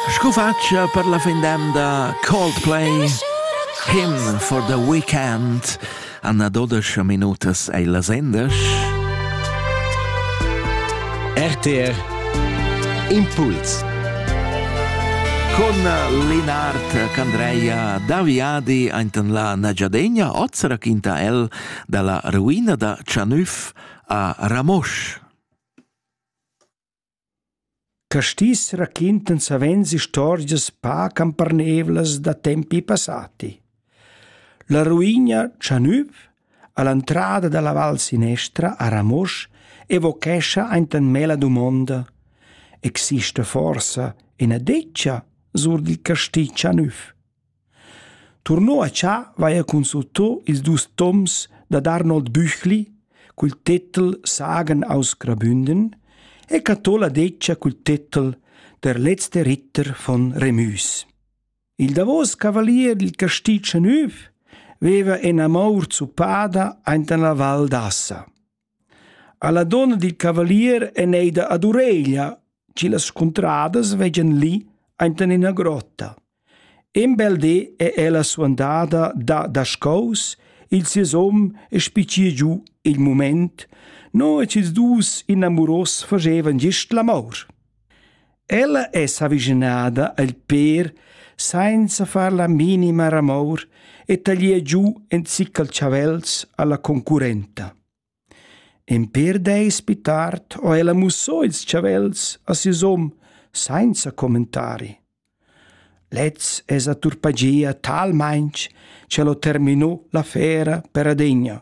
Scu facia per la fin d'emda Coldplay Him for the Weekend Anna Dodesch minutas ei la sendesch RTR Impuls Con Linard Candreia Daviadi ainten la Nagiadegna oz raquinta el dalla ruina da Chanüff a Ramosch. Castis raquintan savens istorgias pac empernevlas da tempi passati. La ruina Chanüv all'entrada dalla val sinestra a Ramosch evochescha enten me la dumonda: exista forsa ina detga sur dil casti Chanüv? Turnò a Tschà vaia consultò ils dus toms dad Arnold Büchli cul tetel Sagen aus Grabünden e cattò la detgia cul tetel Der letzte Ritter von Remüs. Il davos cavalier dil castì Chanüv veva enamor zuppada aint en la Val d'Assa. Alla donna dil cavalier ein ei da ad ureglia, che las scuntradas veggan lì enten ina grotta. In bel di è ella suandada da daschaus, il sies hom e spicir giu il mument, no e ils dus inamuros fagevan gist l'amor. Ella è s'avischinada al pér sainza far la minima ramour e taglier giu in ziccal chavels alla concurrenta. In pér deis pi tard ho ella mussò ils chavels a sius hom sainza commentari. Lez es atturpagia talmainch ch'el ho terminò l'affera per adegna.